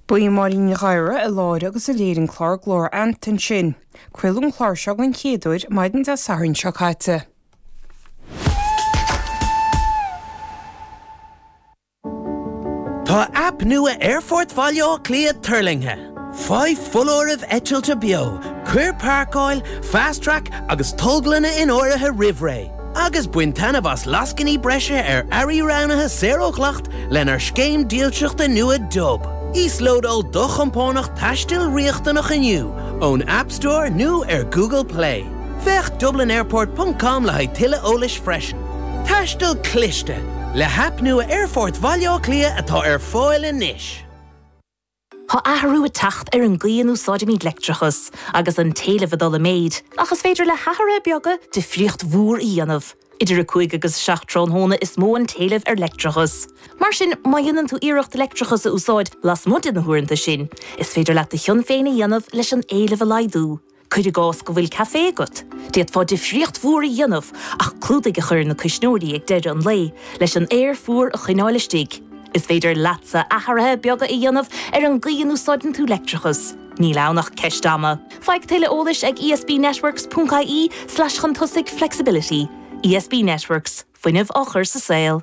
Ba í Máirín Ní Ghadhra a láithrigh agus a léir an clár Glór Anoir ansin. Craoladh an clár seo den chéad uair maidin Dé Sathairn seo caite. Tá aip nua Aerfort Bhaile Átha Cliath tuirlingthe! Faigh foláireamh eitilte beo, cuir páirceáil, Fast Track agus tolglanna in áirithe roimh ré, agus bain taitneamh as lascainí breise ar earraí roghnaithe saor ó dhleacht lenár scéim dílseachta nua Dub. Íoslódáil do chompánach taistil riachtanach inniu ón App Store nó ar Google Play. Féach dublinairport ponc com le haghaidh tuilleadh eolais freisin. Taisteal cliste, le haip nua Aerfort Bhaile Átha Cliath atá ar fáil anois! Tá athrú ag teacht ar an gcaoi a n-úsáidimid leictreachas, agus an t-éileamh ag dul i méid, ach is féidir le hathruithe beaga difríocht mhór a dhéanamh. Idir 5 agus 7 tráthnóna is mó an t-éileamh ar leictreachas. Mar sin, má dhéanann tú iarracht leictreachas a úsáid lasmuigh de na huaireanta sin, is féidir leat do chion féin a dhéanamh leis an éileamh a laghdú. Cuir i gcás go bhfuil caifé agat. D'fhéadfá difríocht mhór a dhéanamh ach clúdaigh a chur ar na cuisneoirí ag deireadh an lae leis an aer fuar a choinneáil istigh. Is féidir leatsa athruithe beaga a dhéanamh ar an gcaoi a n-úsáideann tú leictreachas. Níl ann ach ceist ama. Faigh tuilleadh eolais ag esbnetworks.ie/chun tosaigh flexibility. ESB Networks, fuinneamh á chur sa saol.